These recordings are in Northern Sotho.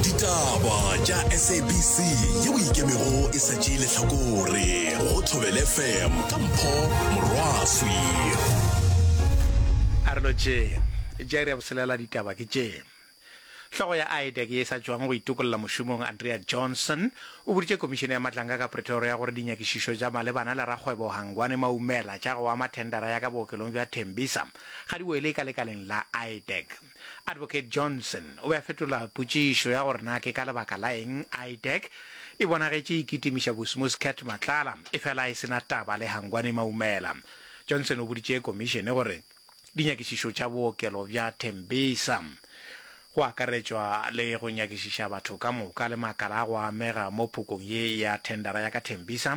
ditaba tša sabc ye o ikemego e sa tšee lehlakore go thobele fm ka mpho morwaswi a re lo tšee jairi ya boselela ditaba ke tšee Hlogo ya IDEC ye e sa tšwago go itokolla mošomong Andrea Johnson o boditše komišene ya matlanga ka Pretoria gore dinyakišišo tša malebana le rakgwebo Hangwane Maumela tša go ama thendara ya ka bookelong bja Tembisa ga di wele ka lekaleng la IDEC. Advocate Johnson o be a fetola potšišo ya gore na ke ka lebaka la eng IDEC e bonagetše e kitimiša Bosmuscat Matlala efela e se na taba le Hangwani Maumela. Johnson o boditše Komišene gore dinyakišišo tša bookelo bja Tembisa, go akaretšwa le go nyakišiša batho ka moka le makala a go amega mo phokong ye ya thendara ya ka Tembisa,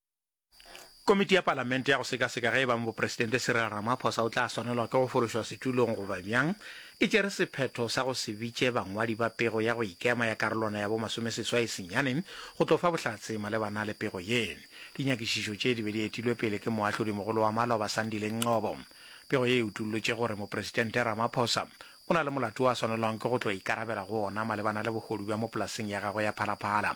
Komiti ya Palamente ya go sekaseka ge e bang Bopresidente Cyril Ramaphosa o tla swanelwa ke go fološwa setulong goba bjang, e tšere sephetho sa go se bitše bangwadi ba pego ya go ikema ya karolwana ya bo masomeseswai senyane go tlo fa bohlatse malebana le pego ye. Dinyakišišo tše di be di etilwe pele ke Moahlodimogolo wa Maloba Sandile Ngcobo. Pego ye e utollotše gore Mopresidente Ramaphosa o na le molato o a swanelwang ke go tlo ikarabela go ona malebana le bohodu bja mo polaseng ya gagwe ya Phala Phala,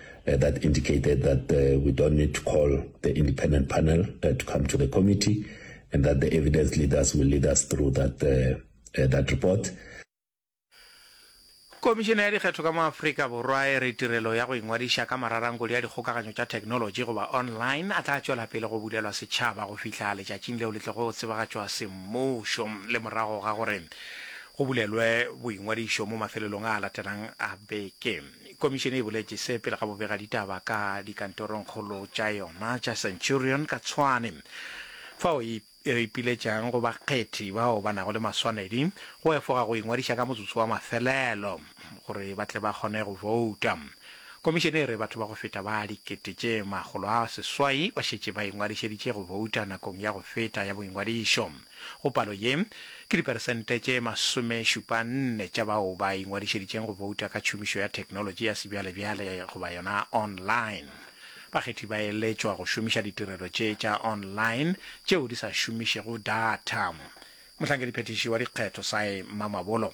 Uh, that indicated that uh, we don't need to call the independent panel uh, to come to the committee and that the evidence leaders will lead us through that, uh, uh, that report. komišene ya dikgetho ka mo aforika borwa e re tirelo ya go ingwadiša ka mararankodi ya dikgokaganyo tša technology goba online a tla tšwela pele go bulelwa setšhaba go fihla letšatšing leo le tlego go tsebagatšwa semmušo le morago ga gore go bulelwe boingwadišo mo mafelelong a latelang a beke Komišene e boletše se pele ga bobegaditaba ka dikantorongkgolo tša yona tša Centurion ka Tshwane, fao e ipiletšang go bakgethi bao ba nago le maswanedi go efoga go ingwadiša ka motsotso wa mafelelo gore ba tle ba kgone go bouta. Komišene e re batho ba go feta ba dikete tše makgolo a seswai ba šetše ba ingwadišeditše go bouta nakong ya go feta ya boingwadišo. Go palo ye, ke diperesente tše masomešupanne tša bao ba ingwadišeditšeng go bouta ka tšhomišo ya theknolotši ya sebjalebjale goba yona online. Bakgethi ba eletšwa go šomiša ditirelo tše tša online tšeo di sa šomišego datha. Mohlankedi-phethiši wa dikgetho Cy Mamabolo.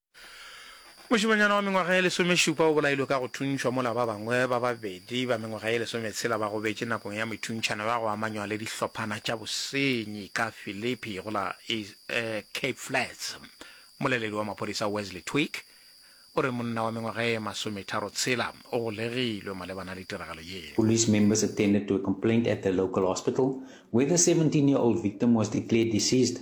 Mošemanyana wa mengwaga ye lesomešupa o bolailwe ka go thuntšhwa mola ba bangwe ba babedi ba mengwaga ye lesometshela ba gobetše nakong ya methuntšhano ya go amanywa le dihlophana tša bosenyi ka Philippi go la Cape Flats. Mmoleledi wa maphodisa Wesley Twigg o re monna wa mengwaga ye masometharo tshela o golegilwe malebana le tiragalo ye. Police members attended to a complaint at the local hospital where the seventeen year old victim was declared deceased.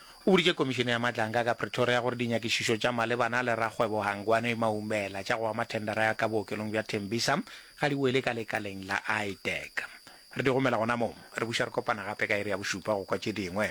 O boditše Komišene ya Matlanka ka Pretoria gore dinyakišišo tša malebana le rakgwebo Hangwani Maumela tša go ama thendara ya ka bookelong bja Tembisa ga di wele ka lekaleng la IDEC. Re di romela gona moo. Re buša re kopana gape ka iri ya bošupa go kwa tše dingwe.